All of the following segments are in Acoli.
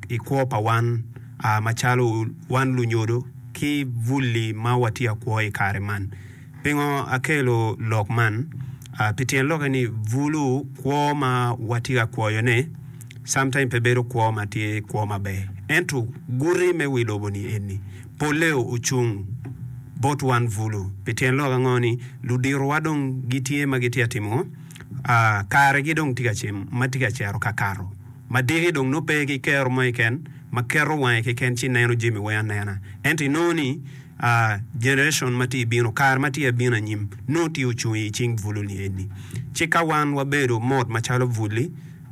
i kwo pa wan macalo wan lunyodo ki bulli ma watye akwo i kare man. Pingo akelo lok man? Pi tyen lokke ni bulu kwo ma watye ka kwoyone sometime pe bedo kwo ma tye kwo maber. Ento guti me wi lobo-ni eni, polle ocung bot wan bulu. Pi tyen lok ango ni luditowa dong gitye ma gitye ka timo ngo? Karegi dong tye ka cito kakato. Ma diki dong nongo pe ki kero mo keken ma keto wange keken ci neno jami weng anena. Ento inongo ni, aa, generation ma tye bino, kare ma tye ka bino anyim, nongo tye ocung i cing buluni eni. Ci ka wan wabedo mot macalo bul-li,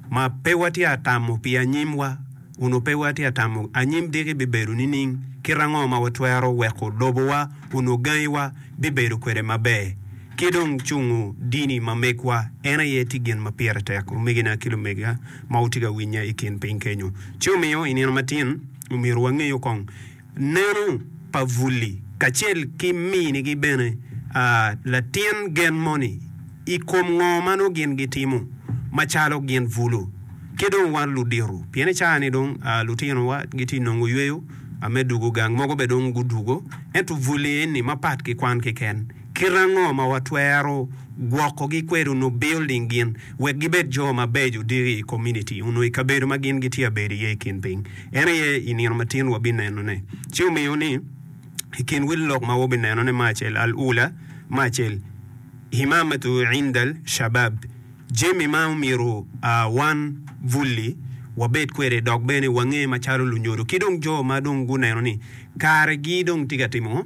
ma pe watye ka tamo pi anyimwa, onongo pe watye ka tamo anyim diki bibedo nining? Kite ango ma watwero weko lobowa onongo gangiwa bibedo kwede maber? ki dong cungo dini ma megwa, en aye tye gin ma pire tek, omegina ki lumega ma wutye ka winya i kin piny kenyo. Ci omiyo, i nino matin, omyero wangeyo kong neno pa Vully kacel ki minigi bene, aa, latin gen moni, i kom ngo ma nongo gin gitimo macalo gin Vulu ki dong wan ludito, pien i caa-ni dong, aa, lutinowa gitye nongo yweyo, aa, me dugo gang mogo bene dong gudugo, ento Vully eni mapat ki kwan kiken. Kit ango ma watwero gwokogi kwede onongo bilding gin wek gibed jo mabeco odiki i komuniti onongo i kabedo ma gin gitye ka bedo iye i kin piny? En aye i nino ma tin wabinenone. Ci omiyo ni, i kin wil lok ma wabinenone me acel, Al-Ula, me acel, Himamatu indal Shabab, jami ma omyero wan bulli wabed kwede dok bene wange macalo lunyodo ki dong jo ma dong guneno ni karegi dong tye ka timo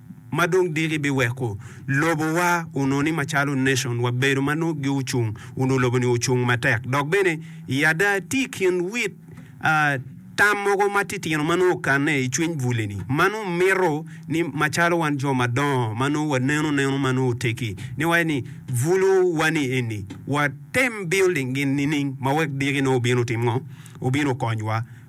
ma dong diki biweko lobo wa onwo ni macalo nation wa bedo ma nwo gi ocung onwo lobo ni ocung matek dok bene i ada tye i kin wit a tam mogo ma titino ma nwo okanne i cwiny buli ni ma nwo mito ni macalo wan jo ma dongo ma nwo wa neno neno ma nwo otegi ni waye ni bulu wa ni eni wa tem building gin nining ma wek diki nwo obino otim ngo obino okony wa.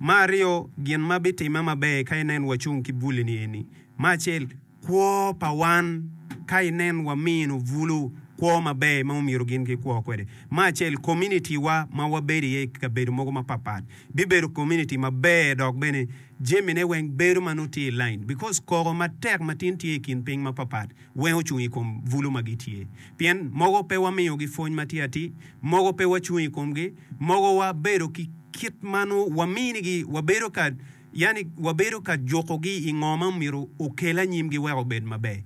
Ma aryo, gin ma bitimme maber ka inen wacung ki bul-li eni. Ma acel, kwo pa wan ka inen wamino bulu kwo maber ma omyero gin gikwo kwede. Ma acel, kominitiwa ma wabedo iye i kabedo mogo mapatpat bibedo kominiti maber dok bene jamine weng bedo ma nongo tye i lain bikos koko matek ma tin tye i kin piny mapatpat weng ocung i kom bulu ma gitye. Pien mogo pe wamiyogi pwony ma tye atir, mogo pe wacung i komgi, Mogowa bedo ki kit ma nongo waminigi, wabedo ka, yani wabedo ka jukogi i ngo ma myero okel anyimgi wek obed maber.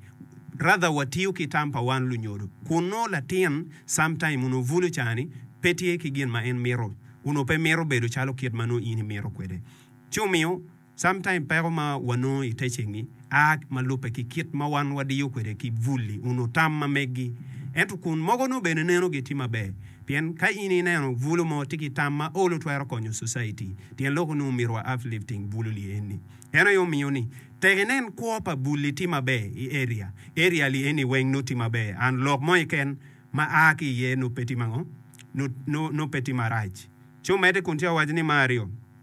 Rather watiyo ki tam pa wan lunyodo, kun nongo latin sometime onongo bulo cani pe tye ki gin ma en mito, onongo pe mito bedo calo kit ma nongo in imito kwede, ci omiyo. Sometimes peko ma wanongo i teaching-ngi a ma lubbe ki kit ma wan wadiyo kwede ki bulli onyo tam ma meggi. Ento kun mogo nongo bene neno gi tye maber. Pien ka in ineno bulu mo tye ki tam ma olo twero konyo society. Tyen lok onongo myero wa uplifting bulu li eni. Eno aye omiyo ni tek inen kwo pa bulli tye maber i area, area li eni weng nongo tye maber and lok mo keken ma a ki iye nongo pe tye mango? nongo pe tye marac. Ci omedde kun ci owaco ni me aryo.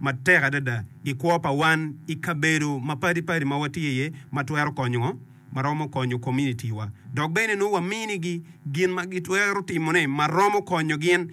matek adada i kwo pa wan i kabedo mapadi padi ma watye iye ma twero konyo ma romo konyo kominitiwa dok bene nongo waminigi gin ma gitwero timone ma romo konyo gin.